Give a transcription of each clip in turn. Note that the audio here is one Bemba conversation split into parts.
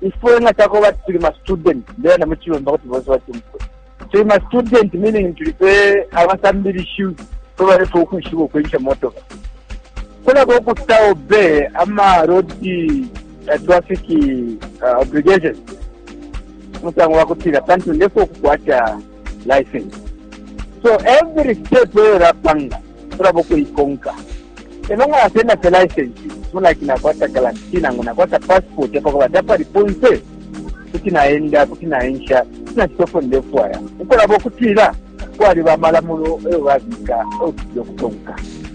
ifwe nga cakoba ati tuli mastudent bena mu cilumba kuti bonse batumfwe tuli mastudent meaning tuli fe abasambilishiwe fwe balefe ukwishiba ukwensha motoka kulaba ukuta obe ama road uh, traffic uh, obligation musango wa kutila pantu ndefe ukukwata license so every step eyo lapanga tulaba ukuikonka elo nga yasenda fe license mulaki nakwata garanti nangu nakwata passport epakoba tapali ponse kuti naenda kuti naensha kuti nakitofo ndefwaya ukulaba okutila kwali bamalamulo eyo babika eyo tujja okutonka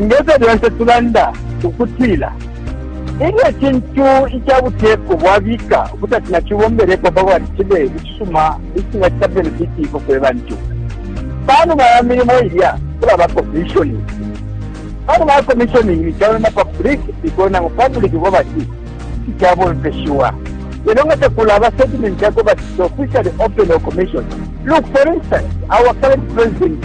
Nge fyo lyonse tulanda ukutila, ilyo icintu ica buteko bwabika ukuti ati nacibombelepo pa kwati cibe icisuma, icingacita benefiti ifwe fwe bantu, pa numa ya milimo ilya kulaba kominshoningi. Pa numa ya kominshoningi caba na pabliki iko, nangu pabliki iko bati icabomfeshiwa. Lelo nga takulaba setimenti ya kuba ati iti ofishali openi o kominshoningi. Look, for instance, our current president.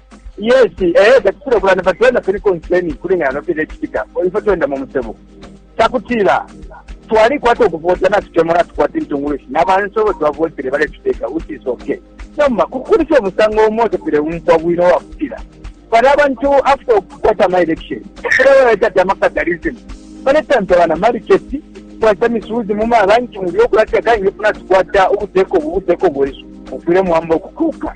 Yes, eh, tatufuna kulanda but wena tuli concerning kulingana no kile kitika. Ifo twenda mu musebo. Takutila twali kwato kuvota na tukemo na tukwata intungulushi. Na bantu bo twavotere bale tuteka which is okay. Nomba kukuri fyo musango umoto pile umpa bwino wa kutila. Bale abantu after ukukwata ma election. Kile wena tata makatalism. Bale tante wana mariketi kwata misuzi mu mabanki mu byo kulata kangi funa tukwata ubuteko ubuteko bwesu. Ukule mwamba kukuka.